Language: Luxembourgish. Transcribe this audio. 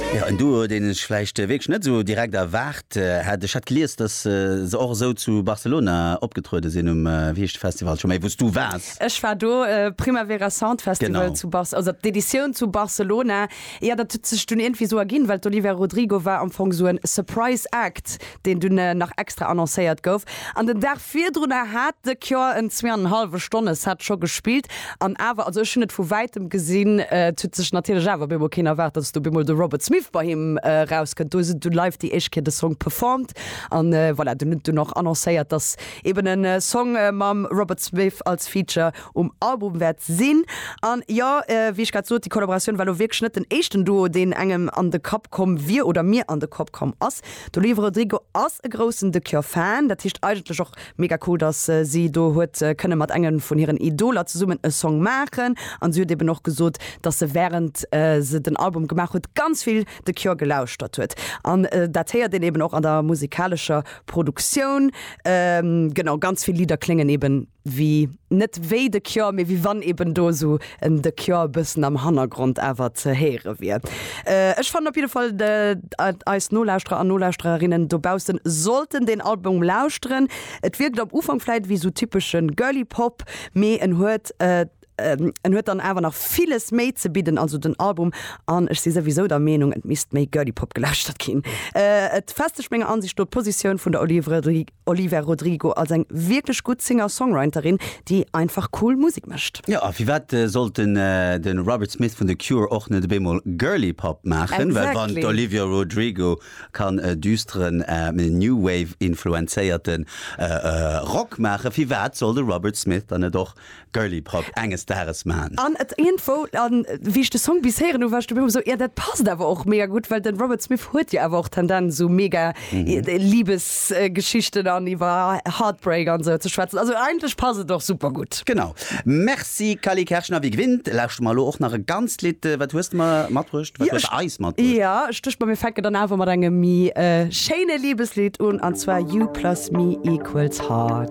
Jo, en Duo, deen ech vläicht wierklech net esou direkt erwaart hätt. Ech hat gelies, datt se och esou zu Barcelona opgetruede sinn, um, wéi heescht de Festival scho méi, wou s du waars? Ech war do, Primavera Sound Festival Genau. zu Barce-, also d'Editioun zu Barcelona. Jo, dat huet sech dunn iergendwéi esou erginn, well d'Olivia Rodrigo war am Fong esou en Surprise Act. deen dunn nach extra annoncéiert gouf. An den Dag virdrunner hat The Cure en zwee an en hallwe Stonne Set scho gespillt. An awer, also ech hunn et vu wäitem gesinn, et huet sech natierlech awer bemol keen erwaart, datt do bemol de Robert Smith bei him erauskënnt. Do huet en dunn live déi éischt Kéier de Song performt an voilà, dunn huet en dunn och annoncéiert, datt eben e Song mam Robert Smith als Feature um Album wäert sinn. An jo, wéi ech grad sot, déi Collaboratioun war elo wierklech net den éischten Duo, deen engem an de Kapp komm wier oder mir an de Kapp komm ass. D'Olivia Rodrigo ass e groussen The Cure Fan, dat heescht eigentlech och mega cool, dass si do huet kënne mat engem vun hiren Idoler zesummen e Song maachen. An si huet eben och gesot, dass se wärend se den Album gemaach huet ganz vill The Cure gelauschtert huet. An dat héiert een eben och an der musikalescher Produktioun. Genau, ganz vill Lidder kléngen eben wéi net wéi The Cure, mee wéi wann eben do esou en The Cure e bëssen am Hannergrond awer ze héiere wier. Ech fannen op jidde Fall, datt eis Nolauschterer an Nolauschtererinnen dobaussen sollten deen Album lauschteren. Et wierkt am Ufank vläit wéi esou typesche Girly Pop, mee en huet ähm, en huet dann awer nach villes méi ze bidden, also den Album an ech si souwisou der Meenung, et misst méi Girly Pop gelauschtert ginn. Äh, et festegt menger Ansicht no d'Positioun vun der Olivia Rodrigo als eng wierklech gutt Singer-Songwriterin, déi einfach cool Musek mécht. Jo, a firwat sollt den de Robert Smith vun The Cure och net ebémol Girly Pop maachen? Well wann Exactly. d'Olivia Rodrigo kann e düsteren, ähm, New Wave-influenzéierten äh, äh, Rock maachen, firwat soll de Robert Smith dann net och Girly Pop enges Dages maan. An et iergendwo, an wéi ech de Song bis héieren hu war ech dobäi hu mer sou, jo dat passt awer och mega gutt, well den Robert Smith huet jo awer och Tendenz sou mega Liebesgeschichten an iwwer Heartbreak an sou ze schwätzen. Also eigentlech passt et och super gutt. Genau. Merci Cally Kerschner. Wie gewinnt lauschte mer elo och nach e ganzt Lidd. Wat hues de mer matbruecht? Wat hues de eis matbruecht? Jo ech duecht mer mir fänken dann awer mat engem mi schéine Liebeslidd un, an zwar You plus me equals heart.